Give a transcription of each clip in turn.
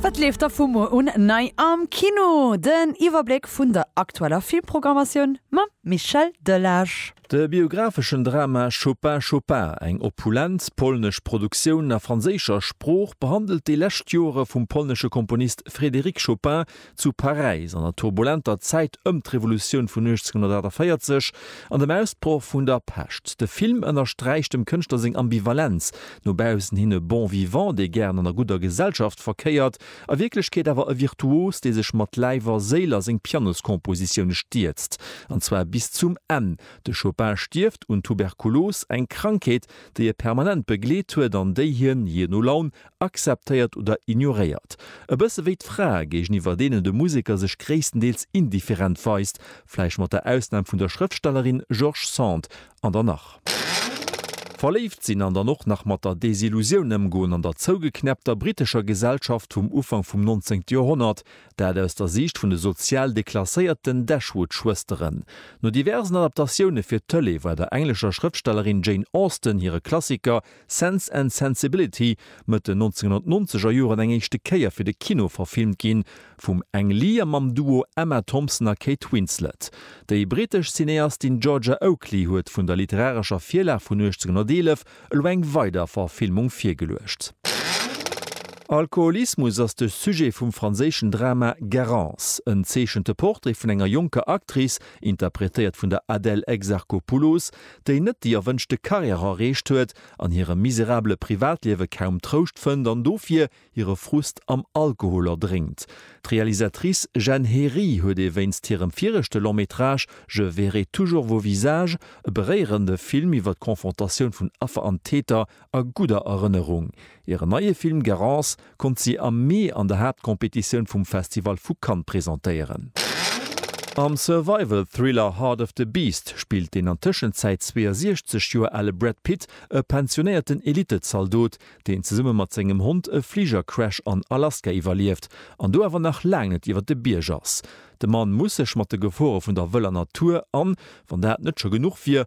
Wat leeft da vu muer un nei am Kino? Den Iwwerbléck vun der aktueller Filmprogrammatioun mam Michel Delage. De biographeschen Drama Chopin, Chopin, eng opulent polnesch Produktioun a franséischer Sprooch, behandelt déi lescht Joere vum polnesche Komponist Frédéric Chopin, zu Paräis an der turbulenter Zäit ëm d'Revolutioun vun 1848 an dem Ausbroch vun der Pescht. De Film ënnersträicht dem Kënschtler seng Ambivalenz, no baussen hin e Bon vivant, dee gären an der gudder Gesellschaft verkéiert, a Wierklechkeet awer e Virtuos, dee sech mat Läif a Séil a seng Pianoskompositioune stierzt, an zwar bis zum Enn. De Chopin stierft un Tuberkulos, eng Krankheet, déi e permanent begleet huet an déi hien, jee no Laun, akzeptéiert oder ignoréiert. E bësse wéi d'Frae, géigeniwwer deenen de Museker sech gréisstendeels indifferent weist, vläicht mat der Ausnam vun der Schrëftstellerin George Sand an der nach. Verléift sinn an dann och nach mat der Desillusioun ëmgoen an der zougeknäppter brittescher Gesellschaft vum Ufank vum 19. Joerhonnert, dat aus der Siicht vun de sozial deklasséierten Dashwood-Schwësteren. No diversen Adaptatioune fir d'Tëlee war der englescher Schrëftstellerin Jane Austen hire Klassiker Sense and Sensibility, Mëtt den 1990 er Joren eng éischte Kéier fir de Kino verfilmt ginn, vum Ang Lee a mam Duo Emma Thompson a Kate Winslet. Déi brittesch Cineastin Georgia Oakley huet vun der literarescher Virlag vun 1811 elo eng weider Verfilmung virgeluecht. Alkoholismus ass de Sujet vum franséischen Drama Garance. En zeechente Portrait vun enger jonker Actrice, interpretéiert vun der Adèle Exarchopoulos, déi net déi erwënschte Karriär erreecht huet, an hirem miserabele Privatliewe kaum Trouscht fënnt an dofir hire Frust am Alkohol erdrénkt. D'Realisatrice Jenn Hery huet ee wéinst hirem viregte Long-métrage Je verrai toujours vos visages e beréierende Film iwwer d'Confrontatioun vun Affer an Täter a gudder Erënnerung. Hiren neie Film Garance konnt si am Mee an der Haaptcompetitioun vum Festival vu Cannes presentéieren. Am Survival-Thriller Heart of the Beast spillt den an Tëschenzäit 62 Joer ale Brad Pitt e pensionéierten Elittezaldot, deen zesumme mat sengem Hond e Fligercrash an Alaska iwwerlieft an do awer nach laang net iwwer de Bierg ass. De Mann muss sech mat de Gefore vun der wëller Natur an, wann dat net scho genuch wier,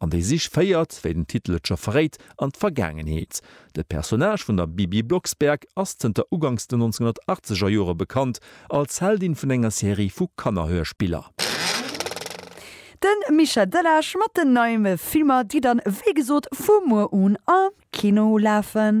An déi Sich féiert, wéi den Titel et scho verréit, an d'Vergaangenheet. De Personnage vun der Bibi Blocksberg ass zënter uganks den 1980 er Jore bekannt als Heldin vun enger Serie vu Kannerhörspiller. De Mischa Delage mat den neime Filmer, déi dann wéi gesot vu muer un am Kino lafen.